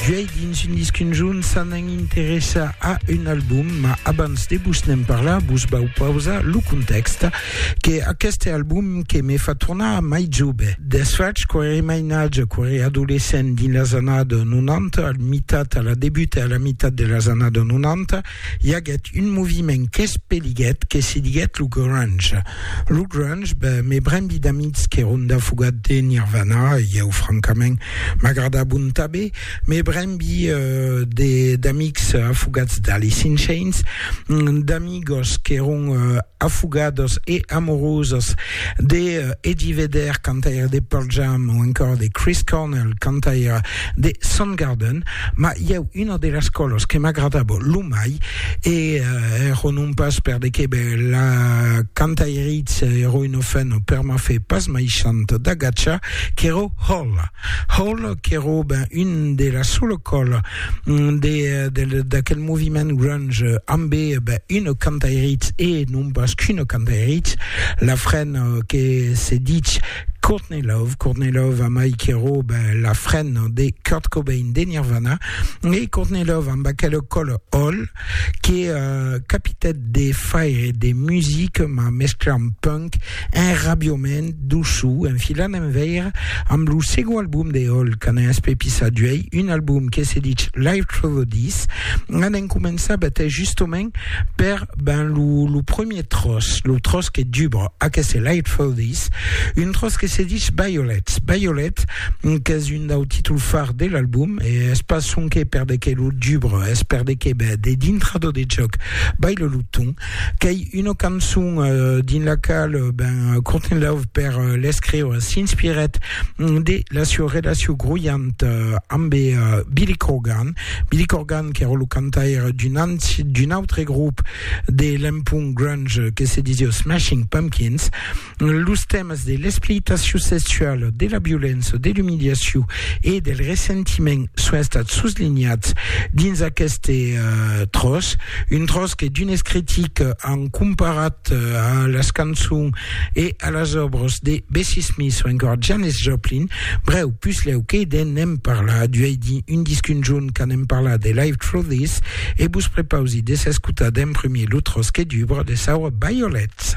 Duei dins un disc conjunt ça n'en interessa a un album, ma abans de vos n'en parlar, vos vau pausar lo context que aqueste album que me fa tornar mai jove. Desfach, quan era mainatge, quan era adolescent dins las annadas 90, al mitat, a la debut e a la mitat de las annadas 90, i aguèt un moviment qu'espeliguèt que se diguèt lo grunge. Lo grunge, ben, me brendi d'amics que Rhonda fogat de Nirvana, e ieu francament m'agrada bon tabé, me brembi d'amics afogats d'Alice in Chains, d'amigos qu'èron afogados e amorosos de eh, Eddie Vedder cantaire de Pearl Jam ou encore de Chris Cornell cantaire de Soundgarden ma i a una de las colos que m'agradava lo mai e eh, ero non pas per de que be, la cantairitz ero una fena per ma fe pas mai chant d'agatcha qu'ero Hole Hole qu'ero ben un de la sola cola mm, de, de, d'aquel moviment grunge ambe ben, un cantairitz e non pas qu'un cantairitz la fren euh, que se dit Courtney Love Courtney Love a mai qu'ero ben, la fren de Kurt Cobain de Nirvana e Courtney Love amb aquel col hol que capitèt de faire de music mas mesclant punk en rabiament doçu en filant en veire amb lo segond album de Hole qu'an espepis a duei, un album que se ditz Live Through the Dis. An en començar betè justement per ben lo, lo premier tròç, lo tròç que dubra aqueste Live Through the Dis, un tròç que se ditz Violets, Violets, qu'es un dau títol far de l'album, e es pas sonque per de qué lo dubre, es per de qué ben, de dintra do de jòc Baile lo ton, qu'ei una cançon dins la qual ben Courtenlove per l'escriure s'inspirèt de la sua relacion groianta ambe Billy Corgan, Billy Corgan qu'èra lo cantaire d'un autre grop de l'empont grunge que se disiá Smashing Pumpkins. Los tèmas de l'explicitacion sexuala, de la violença, de l'umiliacion e del ressentiment son estats soslinhats dins aqueste tròç, un tròç que d'unes critics an comparat a las cançons e a las òbras de Bessie Smith o encore Janis Joplin. Brèu, puslèu que de n'en parlar, duèi dir un disc un jorn qu'a n'en parlar de Live Through This e vos prepausi de s'escotar d'en premier lo tròç que dubra de Sour Violets.